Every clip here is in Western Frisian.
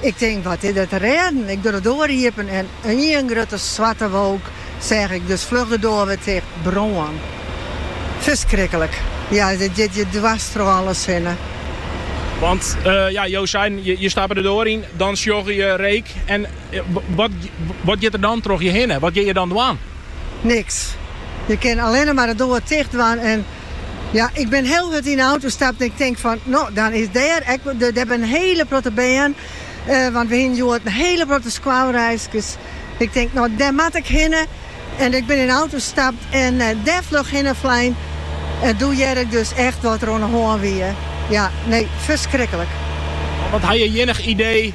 Ik tink, wat is der te rêden? Ik doch de doar iepen en ien grutte swarte wolk seach ik, dus fluch de doar wer ticht. Brân. Ferskriklik. Ja, it giet je dwers troch alles hinne. Want, ja, jo seiden, je stappe de doar yn, dan sjogge je reek en wat giet der dan troch je hinne? Wat kinne je dan dwaan? Niks. Je kinne allinne mar de doar ticht dwaan en. Ja, ik bin hiel hurd yn de auto stapt en ik tink fan, no, dan is dêr ek de, der bin hiele protte bern, eh, want we hiene hjoed in hiele protte skoalreiskes. Ik tink, no, dêr moat ik hinne en ik bin yn de auto stapt en dêr fluch hinne flein en doe hearde ik dus echt wat der oan de hân wie. Ja, nee, ferskriklik. Want ha je iennich idee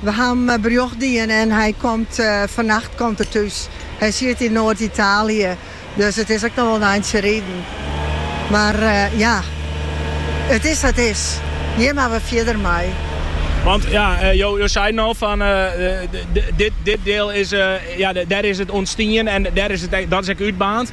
We ha him berjocht dien en hy komt fannacht komt er thús. Hy siet yn Noard-Italië, dus it is ek noch wol in eintsje riden. Mar ja, it is sa't is. Hjir moat we fierder mei. Want ja, jo seiden al fan dit diel is, ja dêr is it ûntstien en dêr is it ek, dat is ek útbaarnd.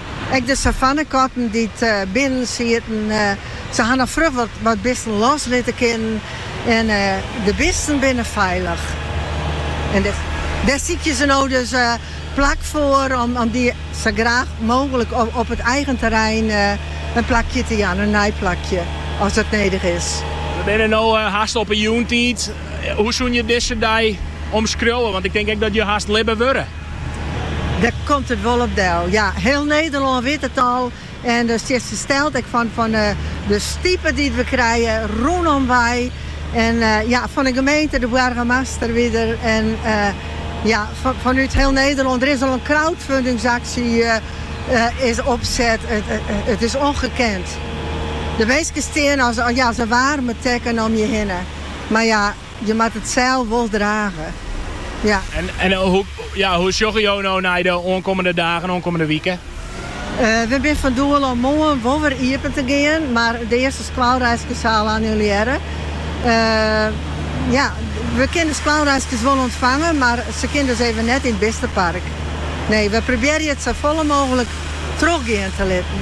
Ek de savannekatten dy't binnen sieten, se ha noch frij wat bisten los litte kinnen en de bisten binne feilich. En dêr sykje se no dus plak foar om dy sa gau mooglik op it eigen terrein in plakje te jaan, in nij plakje, as dat nedich is. We binne no hast op 'e jûntiid. Hoe soene je dizze dei omskriuwe? Want ik tink ek dat je hast libbe wurde. Dêr komt it wol op del. Ja, hiel Nederlân wit it al en je steane fersteld ek fan, fan de stipe dy't we krije rûnom wei. En ja, fan de gemeente, de boargemaster wie der en ja, fanút hiel Nederlân. Der is al in crowdfundingsaksje is opset. It is ongekend. De minsken stean as, ja, as in waarme tekken om je hinne. Mar ja. Je moat it sels wol drage. Ja. En hoe sjogge jo no nei de oankommende dagen, oankommende wike? We binne fan doel om moarn wol wer iepen te gean, mar de earste skoalreiskes ha al annulearre. Ja, we kinne de skoalreiskes wol ûntfange, mar se kinne dus even net yn it bistepark. Nee, we probearje it safolle mooglik trochgean te litten.